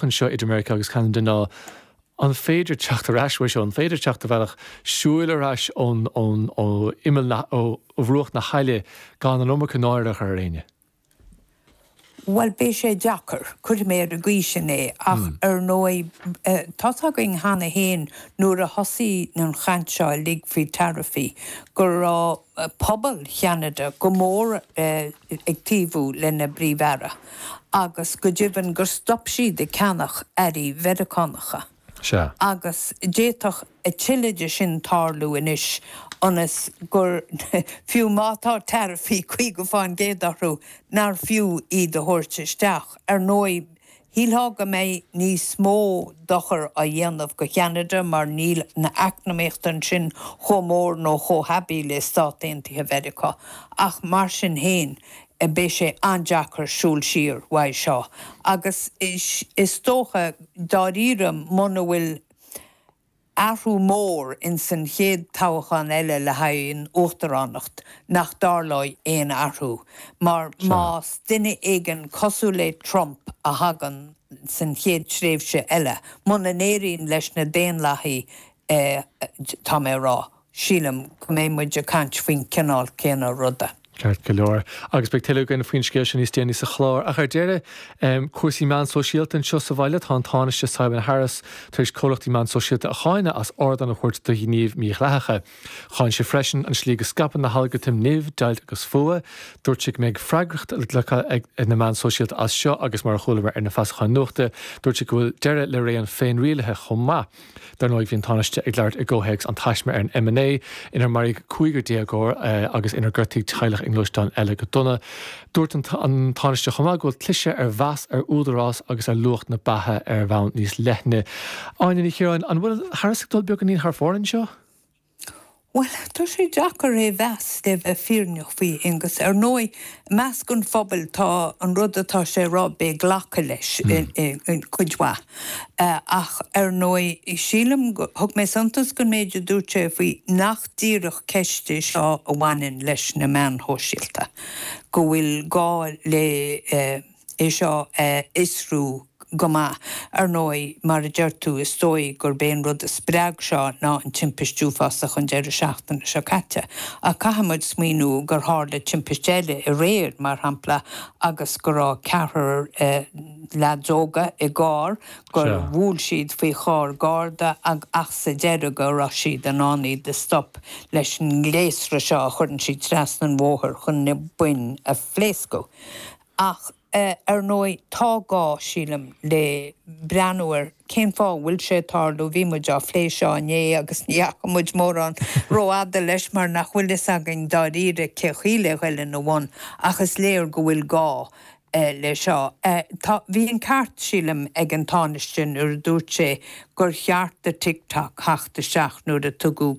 anseo idir Meiriceá agus Ceanada ná an féidir teacht ar ais uaidh seo, an féidir teacht ar bhealach siúil ar ais ó imeall na, ó bhruach na haille gan an iomarca náire a chur ar éinne? Bhuel, beidh sé deacair, cuirfidh mé ar an gcaoi sin é, ach ar ndóigh, tá's againn cheana féin nuair a thosaigh an chaint seo uilig faoi taraifí go raibh pobal Cheanada go mór, ag taobhú lena bpríomh-aire, agus go deimhin gur stop siad ag ceannach earraí Mheiriceánacha. Sea. Agus d'fhéadfadh a thuilleadh de sin tarlú anois, ionas gur fiú má tá taraifí 50 fán gcéad orthu, nár fiú iad a thabhairt isteach. Ar ndóigh, Shílfeá go mbeidh níos mó dochair á dhéanamh do Cheanada mar níl an eacnamaíocht ansin chomh mór nó chomh haibí le Stáit Aontaithe Mheiriceá, ach mar sin féin, beidh sé an-deacair siúl siar uaidh seo. Agus is dócha, dáiríre, muna bhfuil. athrú mór ins an chéad toghachán eile le haghaidh an uachtaránacht nach dtarlóidh aon athrú, mar más duine éigin cosúil le Trump a thagann san chéad tréimhse eile, muna n-éiríonn leis na Daonlathaigh, tá mé a rá. Sílim go mbeidh muid ag caint faoin chineál céanna ruda. Ceart go leor, agus beidh tuilleadh againn faoin scéal seo níos déanaí sa chlár. Ach ar deireadh, cúrsaí meán sóisialta anseo sa bhaile. Tá an Tánaiste Simon Harris tar éis comhlachtaí meán sóisialta a cháineadh as ardán a thabhairt do ghnímh mhídhleathacha. Cháin sé freisin an slí go scaipeann na halgartaim nimh, deighilt agus fuath. Dúirt sé go mbeidh freagracht le glacadh ag na meáin shóisialta as seo agus, mar a chualamar ar na feasacháin nuachta, dúirt sé go bhfuil deireadh le ré an féinrialaithe chomh maith. Dar ndóigh, bhí an Tánaiste ag labhairt i gcomhthéacs an taisme ar an M9 inar maraíodh cúigear déagóir agus inar gortaíodh teaghlach i ngluaisteán eile go dona. Dúirt an Tánaiste chomh maith go bhfuil cliseadh ar mheas, ar údarás agus ar luach na beatha ar bhonn níos leithne. Áine Ní Chiaráin, An bhfuil Harris ag dul beagáinín thar fóir anseo? Bhuel, tá sé deacair é mheas le bheith fírinneach faoi Aonghus. Ar ndóigh, i measc an phobail tá an rud atá sé a rá, beidh glacadh leis, cuid mhaith. Ach ar ndóigh, sílim, thug mé suntas don méid a dúirt sé faoi nach díreach ceist é seo a bhaineann leis na meáin shóisialta, go bhfuil gá le. é seo a fhiosrú go maith. Ar ndóigh, mar a deir tú, is dóigh gurb é an rud a spreag seo ná an timpist uafásach an deireadh seachtaine seo caite, ach caithfidh muid smaoiniú gur tharla timpist eile aréir, mar shampla, agus go raibh ceathrar leads óga i gcarr, gur bhuail siad faoi charr Garda ach sa deireadh go raibh siad in ann iad a stop leis an ngléasra seo a chuireann siad trasna an bhóthair chun na boinn a phléascadh. Ach, ar ndóigh, tá gá, sílim, le breathnú ar cén fáth a bhfuil sé ag tarlú. Bhí muid á phlé seo inné agus ní dheachaigh muid mórán rófhada leis mar nach bhfuil fhios againn dáiríre cén chaoi le ghoil ina bhun ach is léir go bhfuil gá le seo. Tá, bhí an ceart, sílim, ag an Tánaiste nuair a dúirt sé gur cheart do TikTok theacht isteach nuair a tugadh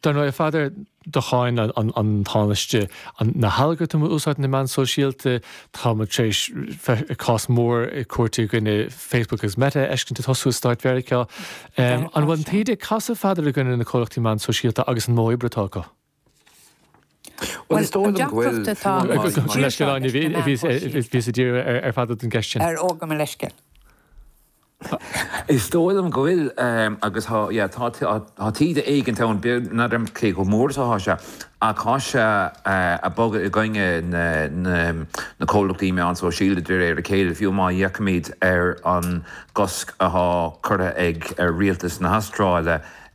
Dar ndóigh, a Pheadair, do cháin an Tánaiste na halgartaim a úsáideann na meáin shóisialta. Tá muid tar éis cás mór cúirte i gcoinne Facebook agus Meta a fheiscint ag tosú i Stáit Mheiriceá. An bhfuil an taoide ag casadh, a Pheadair, i gcoinne na comhlachtaí meán sóisialta agus an modh oibre atá acu? Bhuel, is dóigh liom go bhfuil. Bhí sé ag dul amú leis an leithscéal. Bhíos ag iarraidh ar Pheadar don gceist sin. Á, gabh mo leithscéal. Is dóigh liom go bhfuil agus tá taoide éigin ann, ní fheadar cé chomh mór is atá sé, ach tá sé ag bogadh i gcoinne na comhlachtaí meán sóisialta de réir a chéile, fiú má fhéachaimid ar an gcosc atá curtha ag Rialtas na hAstráile